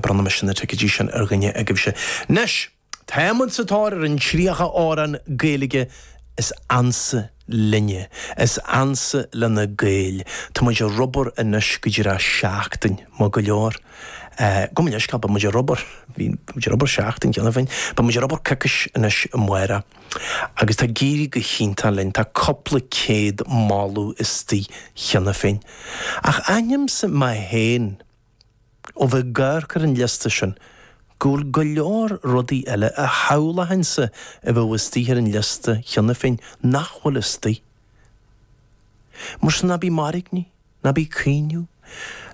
Bronnaimis na ticeidí sin ar dhuine agaibhse 'nois! Táimid sa tóir ar an 30 amhrán Gaeilge is ansa linne, is ansa le na Gaeil. Tá muid ag obair anois go díreach seachtain. Maith go leor. Gabh mo leithscéal, beidh muid ag obair, bhí muid ag obair seachtain cheana féin, beidh muid ag obair coicís anois amárach. Agus tá ag éirí go hiontach linn, tá cúpla céad moladh istoigh cheana féin. Ach aithnímse mé féin. Ó bheith ag amharc ar an liosta sin, go bhfuil go leor rudaí eile a shamhlóinnse a bheadh istigh ar an liosta cheana féin nach bhfuil istigh. Mar sin, ná bí ag mairgní, ná bí ag caoineadh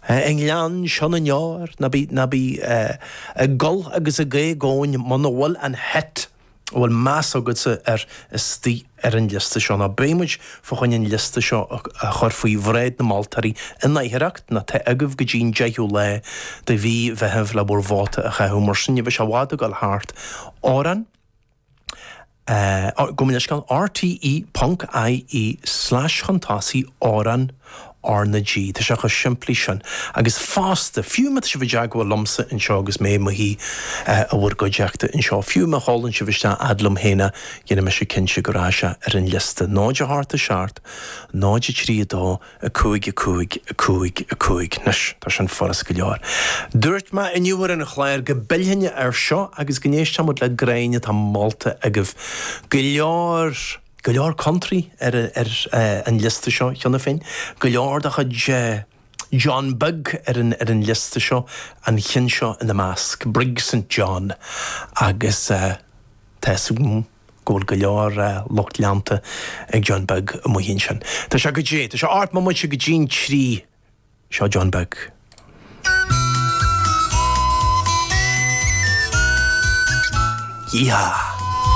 i ngleann seo na ndeor, ná bí ag gol agus ag éagaoin muna bhfuil an het. A bhfuil meas agatsa air istigh ar an liosta seo? Ná beidh muid fá choinne an liosta seo a chur faoi bhráid na moltóirí in aicearracht ná tá agaibh go dtí an deichiú lá de mhí Mheithimh le bhur vóta a chaitheamh mar sin ní bheidh sé i bhfad ag goil thart Amhrán Gabh mo leithscéal, rte. ie slash chun tosaigh, amhrán. R na G, Tá sé chomh simplí sin. Agus fosta, fiú má tá sibh i dteagmháil liomsa anseo agus mé i mo shuí i bhur gcuideachta anseo, fiú má sheolann sibh isteach 'fhad liom féin é déanfaidh mise cinnte go raibh sé ar an liosta. 0 7 a seacht, 0 3 a dó, a 5 a cúig, a 5 a cúig. Anois, tá sin furast go leor. Dúirt mé inniu ar an chlár go bpillfinn air seo agus go n-éistfeadh muid le ceann atá molta agaibh go leor. go leor country ar an liosta seo cheana féin, go leor de chuid John Beag ar an liosta seo, an cheann seo ina measc, Brig St John, agus tá fhios agam go bhfuil go leor lucht leanta ag John Beag amuigh ansin. Tá sé go dtí, tá sé ocht mbomaite go dtí an trí, seo John Beag. Yeehaw!